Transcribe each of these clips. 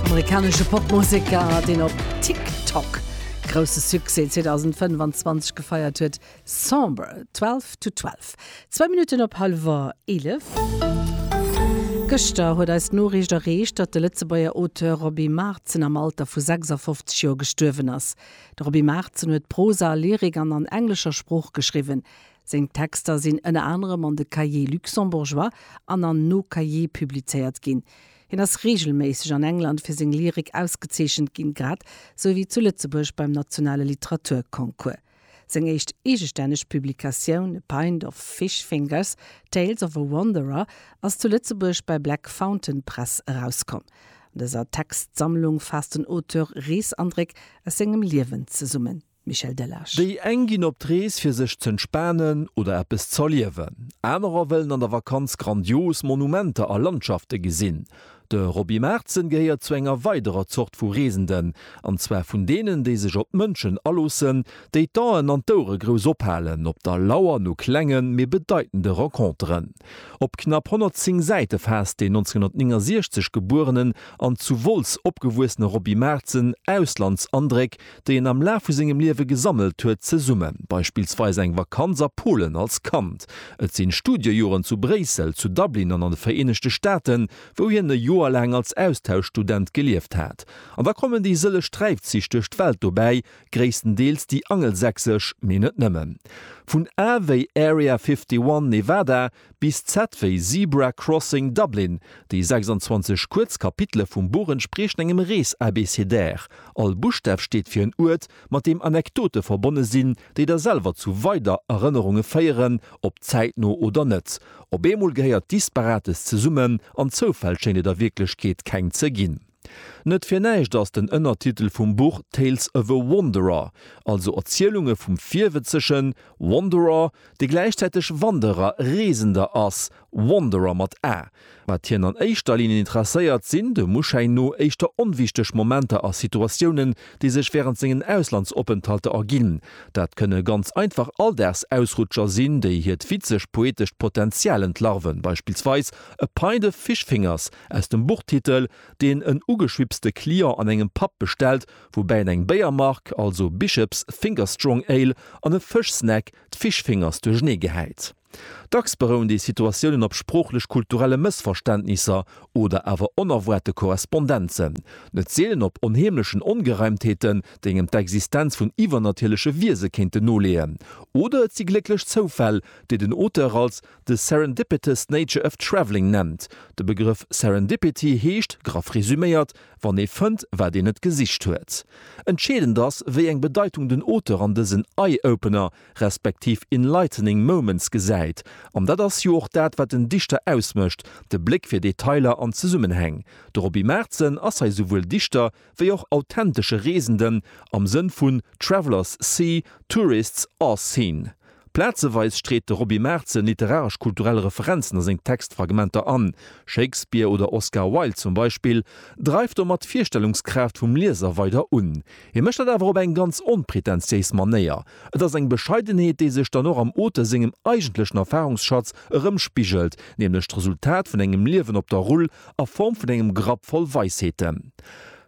Amerikanesche Popmuseker, deen op TikTok grousse Succès 2025 gefeiert huet, Somber, Twelve to Twelve. Zwou Minutten op hallwer eelef. Gëschter huet eis d'Noriicht erreecht, datt de Lëtzebuerger Auteur Roby Maartzen am Alter vu 56 Joer gestuerwen ass. De Roby Maartzen huet Prosa, Lyrik an an englescher Sprooch geschriwwen. Seng Texter sinn ënner anerem an de Cahiers luxembourgeois an an Nos Cahiers publizéiert ginn. Hien ass reegelméisseg an England fir seng Lyrik ausgezeechent ginn, grad sou wéi zu Lëtzebuerg beim nationale Literaturconcours. Seng éischt eegestänneg Publikatioun A Pint of Fish Fingers, Tales of a Wanderer ass zu Lëtzebuerg bei Black Fountain Press erauskomm. An dëser Textsammlung faasst den Auteur Reesandréck aus sengem Liewen zesummen. Michel Delage. Déi eng ginn op d'Rees fir sech z'entspanen oder eppes z'erliewen. Anerer wëllen an der Vakanz grandios Monumenter a Landschafte gesinn. De Roby Maertzen gehéiert zu enger weiderer Zort vu Reesenden, an zwar vun deenen, déi sech op d'Mënschen aloossen, déi d'Aen an d'Ouere grouss ophalen op der Lauer no klengen, mee bedeitende Renconteren. Op knapp 110 Säite faasst deen 1969 gebuerenen an zu Wolz opgewuessene Roby Maertzen Auslandsandréck déi en am Laf vu sengem Liewe gesammelt huet, zesumme, beispillsweis eng Vakanz a Polen als Kand, et si Studiejoren zu Bréissel, zu Dublin an an de Vereenegte Staaten, wou hien e Joer laang als Austauschstudent gelieft hat. An da kommen déi sëlleg Träifzich duerch d'Welt dobäi, gréisstendeels déi angelsächsesch, mee net nëmmen. Vun A wéi Area 51, Nevada, Bis Zett wéi Zebra Crossing Dublin, déi 26 kuerz Kapitele vum Buch entspriechen engem Rees-Abécédaire. All Buschstaf steet fir en Uert, mat deem Anekdote verbonne sinn, déi der selwer zu weider Erënnerunge féieren, ob zäitno oder net. Op eemol gehéiert Disparates zesummen, an Zoufäll schéint et a Wierklechkeet keng ze ginn. Net fir näischt ass den Ënnertitel vum Buch Tales of a Wanderer, also Erzielunge vum Virwëtzegen, Wanderer, dee gläichzäiteg Wanderer, Reesender, ass, Wanderer mat a. Wat hien an éischter Linn interesséiert, sinn, dem Uschäin no, éischter onwichteg Momenter a Situatiounen, déi sech wärend sengen Auslandsopenthalter erginn. Dat kënne ganz einfach Alldagsausrutscher sinn, déi hiert witzeg-poetescht Potenzial entlarven, beispillsweis A pint of fish fingers, Aus dem Buchtitel, deen en ugeschwipste Client an engem Pub bestellt, woubäi en eng Béiermark, also Bishops Finger Strong Ale, an e Fëschsnack, d'Fish Fingers, duerchenee gehäit. Dacks berouen déi Situatiounen op sproochlech-kulturelle Mëssverständnisser oder awer onerwaarte Korrespondenzen, net seelen op onheemlechen Ongereimtheeten, déi engem d'Existenz vun iwwernatierleche Wiese kéinten noleeën. Oder et si glécklech Zoufäll, déi den Auteur als. The Serendipitous Nature of Travelling nennt. De Begrëff Serendipity heescht, graff resuméiert, wann ee fënnt, wat een net gesicht huet. Entscheedend ass, wéi eng Bedeitung den Auteur an dësen Eye-Opener, respektiv Enlightening Moments gesäit. An dat ass jo och dat, wat en Dichter ausmécht, de Bléck fir Detailer an Zesummenhäng. De Roby Maartzen ass hei souwuel Dichter, wéi och authentesche Reesenden am Sënn vun Travellers see, tourists are seen. Plazeweis street de Roby Maertzen literaresch-kulturell Referenzen a seng Textfragmenter an, Shakespeare oder Oscar Wilde zum Beispill, dreift domat d'Virstellungskraaft vum Lieser weider un. Hie mécht dat awer op eng ganz onpretentiéis Manéier, et ass eng Bescheidenheet, déi sech dann och am Auteur sengem eigentlechen Erfarungsschatz erëmspigelt, nämlech d'Resultat vun engem Liewen op der Rull, a Form vun engem Grapp voll Weisheeten.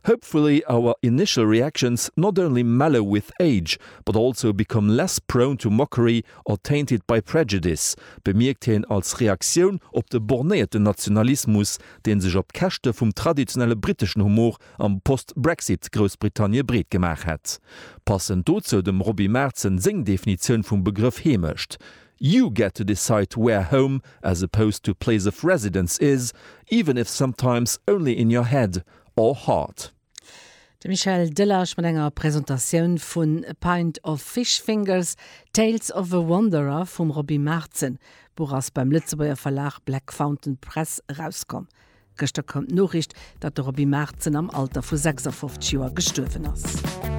Hopefully our initial reactions not only mellow with age, but also become less prone to mockery or tainted by prejudice, bemierkt hien als Reaktioun op de bornéierten Nationalismus, dee sech op Käschte vum traditionelle briteschen Humor am Post-Brexit-Groussbritannie breet gemaach hätt. Passend dozou dem Roby Maertsen seng Definitioun vum Begrëff Heemecht, You get to decide where home as opposed to place of residence is, even if sometimes only in your head or heart. De Michel Delage mat enger Presentatioun vu A pint of fish fingers, Tales of a wanderer vum Roby Maartzen. D'Buch ass beim Lëtzebuerger Verlag Black Fountain Press erauskomm. Gëschter koum d'Noriicht, datt de Roby Maartzen am Alter vu 56 Joer gestuerwen ass.